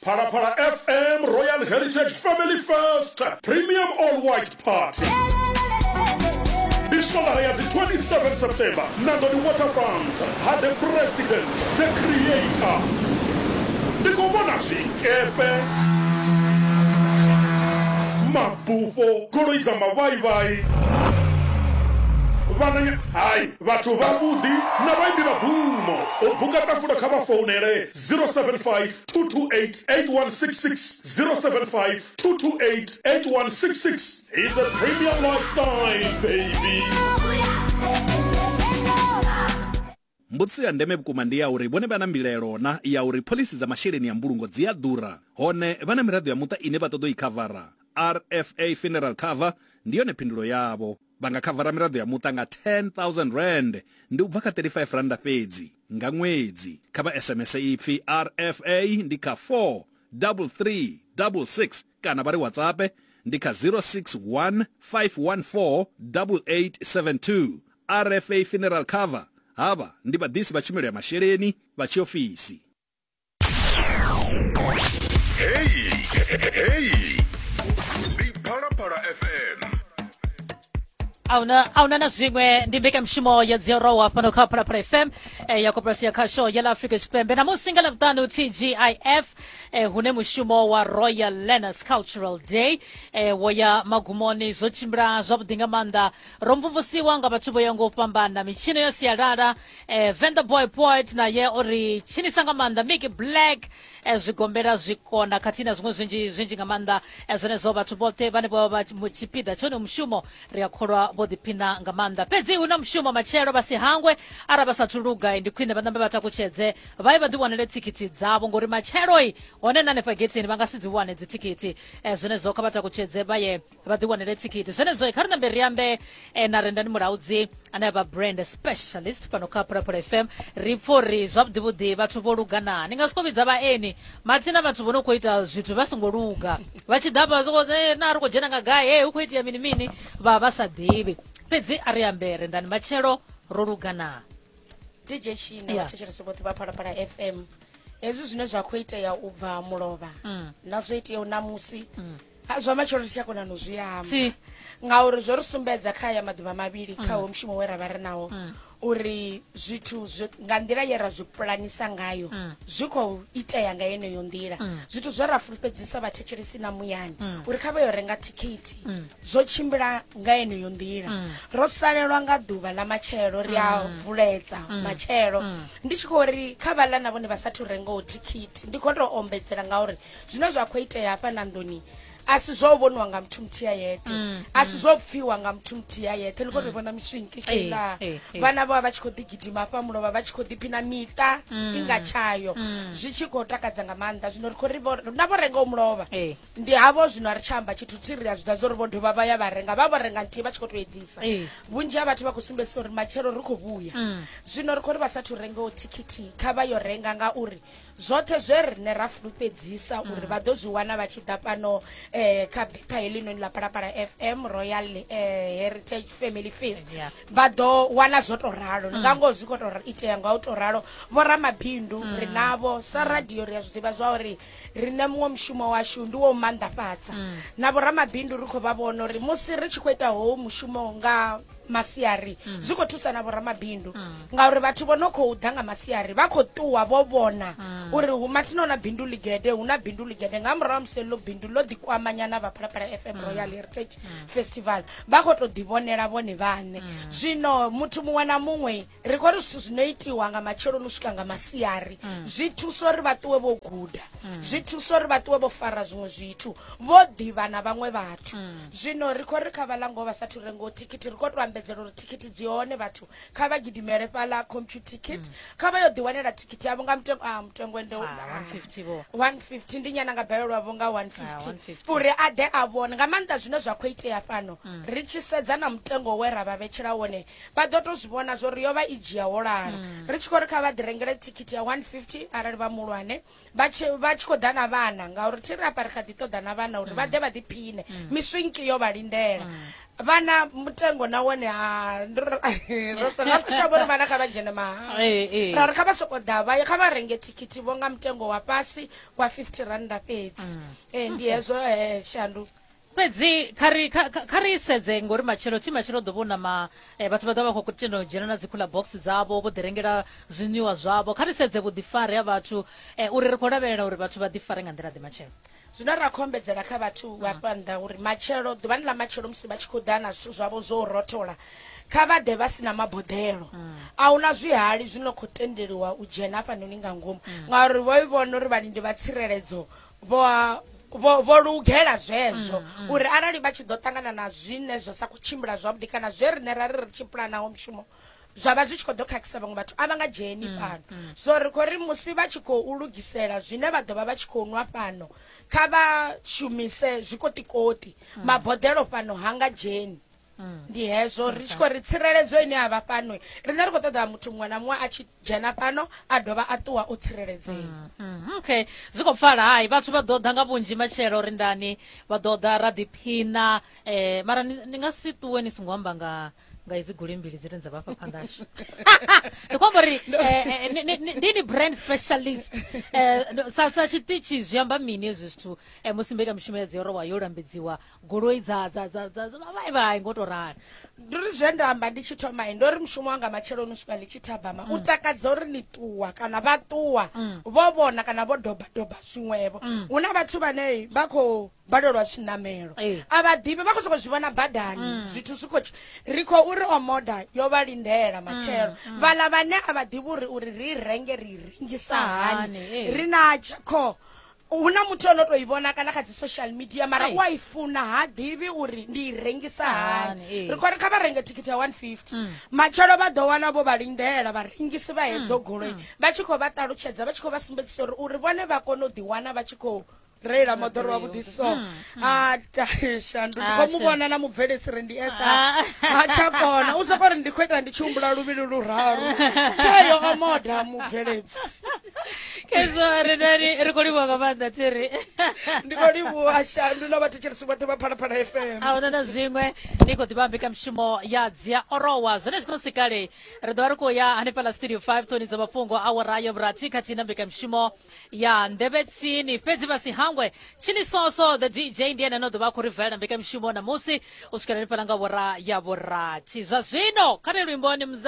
Phalaphala FM Royal Heritage Family Fest Premium All White Party ndi swalaha ya dzi 27 september nangoni waterfront ha the president the creator ndi khou vhona zwikepe mabufho goloi dza mavhaivhai vhananya hai Vhathu vhavhuḓi na vhaimbi vha bvumo. U buka ṱafulo kha vha founele 0752288166, 0752288166. He's a premium lifestyle baby. Mbudziso ya ndeme vhukuma ndi ya uri vhone vha na mbilaelo na ya uri phoḽisi dza masheleni a mbulungo dzi a ḓura, hone vha na miraḓo ya muṱa ine vha ṱoḓa u i khavara? RFA Funeral Cover ndi yone phindulo yavho. Vha nga khavara miraḓo ya muṱa nga R10,000, ndi u bva kha R35 fhedzi, nga ṅwedzi. Kha vha SMS ipfi RFA ndi kha 43366 kana vha ri WhatsAppe ndi kha 061 514 8872. RFA Funeral Cover, Havha ndi vhaḓisi vha tshumelo ya masheleni vha tshiofisi. Hey, hey, ndi Phalaphala FM. auna aunana zviṅwe ndi mbekanyamushumo ya dziorowa fhano kha phalaphala fm eh, ya koporasi ya khasho ya la africa tshipembe na musi nga lavhuṱanu tgif eh, hune mushumo wa royal learners cultural day eh, wo ya magumoni zwo tshimbila zwavhuḓi nga maanḓa ro mvumvusiwa nga vhathu vho ya ngo u fhambana mitshino ya sialala eh, venda boy poet naye o ri tshinisa nga maanḓa miki black eh, zwigombela zwikona khathihi na zwiṅwe zwinzhi zwinzhi nga maanḓa eh, zwenezwo vhathu vhoṱhe vhane vho vha tshipiḓa tshone mushumo ri a kholwa vho ḓiphina nga maanḓa fhedzi hu na mushumo matshelo vha si hangwe ara vha sathu luga eh, ndi khwine vha ṋambe vha takutshedze vha ye vha ḓiwanele thikhithi dzavho ngori matshelo i hone na hanefha getheni vha nga si dzi wane dzithikhithi eh, zwenezwo kha vha takutshedze vha ye vha ḓi wanele thikhithi zwenezwo kha ri nambe ri ambe eh, na rendani mulaudzi ane a vha brand specialist fhano kha phalaphala fm ri pfa uri zwavhuḓi vhuḓi vhathu vho lugana ni nga siko vhidza vhaeni mathina vhathu vho no khou ita zwithu vha songo luga vha tshi ḓa vha soko eh, na ri khou dzhena nga gai hey, hu khou itea mini mini vha vha sa ḓivhi fhedzi a ri ambe rendani matshelo ro lugana dj shina Yeah. vhathetshelesi vhoṱhe vha phalaphala fm hezwi zwine zwa khou itea u bva mulovha na zwo iteaho namusi Ha, zwa matshelo ri si tsha kona no zwi amba Si. ngauri zwo ri sumbedza kha ya maḓuvha mavhili Mm. kha wo mushumo we ra vha ri nawo uri zwithu zwi- nga nḓila ye ra zwi pulanisa ngayo Mm. zwi khou itea nga yeneyo nḓila Mm. zwithu zwe ra fulufhedzisa vhathetshelesi na muyani Mm. uri kha vha yo renga thikhithi Mm. zwo tshimbila nga yeneyo nḓila Mm. ro salelwa nga ḓuvha ḽa matshelo ri a Mm. vuledza Mm. matshelo Mm. ndi tshi khou ri kha vhaḽa na vhone vha sathu rengaho thikhithi ndi khou tou ombedzela ngauri zwine zwa khou itea hafha na nḓuni a si zwo vhoniwa nga muthu muthihi a yeṱhe mm, a si mm. zwo pfiwa nga muthu muthihi a yeṱhe ni khou ri mm. vhona miswinki kila eh, eh, eh. vhana vha vha tshi khou ḓigidima hafha mulo vha vha tshi khou ḓiphina miṱa i nga tshayo zwi tshi khou takadza nga maanḓa zwino ri khou ri na vho renga u mulovha ndi havho zwino a ri tshi amba tshithu thi ri a zwi ḓa zwo ri vho dovha vha ya vha renga vha vho renga nthihi vha tshi khou tou edzisa vhunzhi ha vhathu vha khou sumbedzisa uri matshelo ri khou vhuya zwino ri khou ri vha sathu rengaho thikhithi kha vha yo renga ngauri zwoṱhe zwe rine ra fulufhedzisa uri mm. vha ḓo zwi wana vha tshi ḓa fhano um eh, kha bipha helinoni ḽa palapala fm royal um heritage family fees vha ḓo wana zwo to ralo mm. nga ngoho zwi kho to itea nga u to ralo vho ramabindu mm. ri navho sa radio ri a zwi ḓivha zwa uri rine muṅwe mushumo washu ndi wo maanḓafhadza na vho ramabindu ri khou vha vhona uri musi ri tshi khou ita howo mushumo nga masiari mm. zwi khou thusa na vhoramabindu mm. ngauri vhathu vho no khou ḓa nga masiari vha khou ṱuwa vho vhona mm. uri hu mathina na bindu ligede hu na bindu ligede nga murahu ha musi ḽo bindu ḽo ḓikwamanyana vha phalaphala fm mm. royal heritage mm. festival vha khou tou ḓivhonela vhone vhaṋe mm. zwino muthu muṅwe na muṅwe ri khou ri zwithu zwi no itiwa nga matsheloni u swika nga masiari mm. zwi thusa uri vha ṱuwe vho guda mm. zwi thusa uri vha ṱuwe vho fara zwiṅwe zwithu vho ḓivha na vhaṅwe vhathu mm. zwino ri khou ri kha vha lango vha sa thu rengaho thikhithi ri khou tou ambedzela uri thikhithi dzi hone vhathu kha vha gidimele fhaḽa computer ticket kha vha yo ḓiwanela thikhithi yavho nga mutengo a mutengo ende 150 ah, ndi nyana nga balelwa vho nga 150 ah, uri a ḓe a vhone nga maanḓa zwine zwa khou itea fhano ri tshi sedza na mutengo we ra vha vhetshela wone vha ḓo to zwi vhona zwo ri yo vha i dzhia wo lala mm. ri tshi khou ri kha vha ḓi rengele thikhithi ya 150 arali vha muhulwane vha tshi khou ḓa na vhana ngauri thi ri apa ri kha ḓi ṱoḓa na vhana uri vha mm. ḓe vha ḓiphine mm. miswinki yo vha lindela vhana mutengo na wone ha rotoshavo ri vhana kha vha dzhene mahala eh, eh. ra ri kha vha soko ḓa vha kha vha renge thikhithi vho nga mutengo wa fhasi wa 50 randa fhedzi um ndi hezwo shandu fhedzi kha ri kha- kha- kha ri sedze ngori matshelo thi matshelo ḓo vhona ma eh, vhathu vha ḓo vha vha khou tenda u dzhena na dzikhuḽa box dzavho vho ḓirengela zwiṅwiwa zwavho kha ri sedze vhuḓifari ha vhathu eh, uri ri khou lavhelela uri vhathu vha ḓifare nga nḓila ḓe matshelo zwine ra khou ombedzela kha vhathu vha fha nnḓa uri matshelo ḓuvhani ḽa matshelo musi vha tshi khou ḓa na zwithu zwavho zwo rothola kha vha ḓe vha si na maboḓelo a hu na zwihali zwi no khou tendeliwa u dzhena hafhanoni nga ngomu ngauri vho i vhona uri vhalindi vha tsireledzo vho lugela zwezwo mm, mm. uri arali vha tshi ḓo ṱangana na zwine zwo sa khou tshimbila zwavhuḓi kana zwe rine ra ri ri tshi pulanaho mushumo zwa vha zwi tshi khou ḓo khakhisa vhaṅwe vhathu a vha nga dzheni mm, fhano so ri khou ri musi vha tshi khou lugisela zwine vha ḓo vha vha tshi khou nwa fhano kha vha shumise zwikotikoti maboḓelo fhano ha nga dzheni Mm. ndi hezvo ri tshi khou ri tsireledzo ine a vha fhano riṋe ri khou ṱoḓa muthu muṅwe na muṅwe a tshi dzhena fhano a dovha a ṱuwa o tsireledzea mm, mm, okay zwi khou pfala hai vhathu vha ḓo ḓa nga vhunzhi matshelo ri ndani vha ḓo ḓa ra ḓiphina um eh, mara ni nga si ṱuwe ni songo amba nga nga idzi goli mbili dzine dza vhafha phandashu ndi khombo ri eh, eh, ndi ni brand specialist eh, sa sa tshiṱitshi zwi amba mini hezwi zwithu musi mbekamishumo ya dzi yorowa yo lambedziwa goloi dza dza dza dza dza- vha- vha- vha ngo to rali ndi uri zwe nda amba ndi tshi thoma i ndo ri mushumo wanga matsheloni u swika ḽi tshi thabama u takadza uri ni ṱuwa kana vha ṱuwa vho vhona kana vho doba doba zwiṅwevho hu na vhathu vhane vha khou balelwa zwiṋamelo Eh. a vha ḓivhi vha khou sokou zwi vhona badani zwithu zwi khou tshi- ri khou uri omoda yo vha lindela matshelo vhaḽa vhane a vha ḓivhi uri uri ri renge ri rengisa Hani, hani eh. ri na tshakho hu na muthu o no to i vhona kana kha dzi social media mara u a i funa ha ḓivhi uri ndi i rengisa hani eh. ri khori kha vha renge thikhithi ya 150 mm. matshelo vha ḓo wana vho vha lindela vharengisi vha hedzo mm. goloi mm. vha tshi khou vha ṱalutshedza vha tshi khou vha sumbedzisa uri uri vhone vha kone u ḓiwana vha tshi khou reila moḓoro wa vhuḓi so a taishandu ndi khou mu vhona na mubvelesi re ndi esa ah. ha tsha kona u soko ri ndi khou ita ndi tshi humbula luvhili luraru khayo omoda mubveledzi khaidzo ri nani ri khou livhuwa nga maanḓa thiri ndi khou livhuwa shandu na vhathetshelisi vhoṱhe vha phalaphala fm a huna na zwiṅwe ni khou ḓivha mbekanyamushumo ya dzia orowa zwone zwino si kale ri ḓovha ri khou ya hanefhala studio 5 ṱoni dza mafhungo a warayo vhurathi khathihi na mbekanyamushumo ya nḓevhe tsini fhedzi vha si hangwe tshini soso the dj ndi ene no ḓovha a khou ri valela mbekanyamushumo ṋamusi u swikela hanefhala nga wara ya vhurathi zwa zwino kha ri luimboni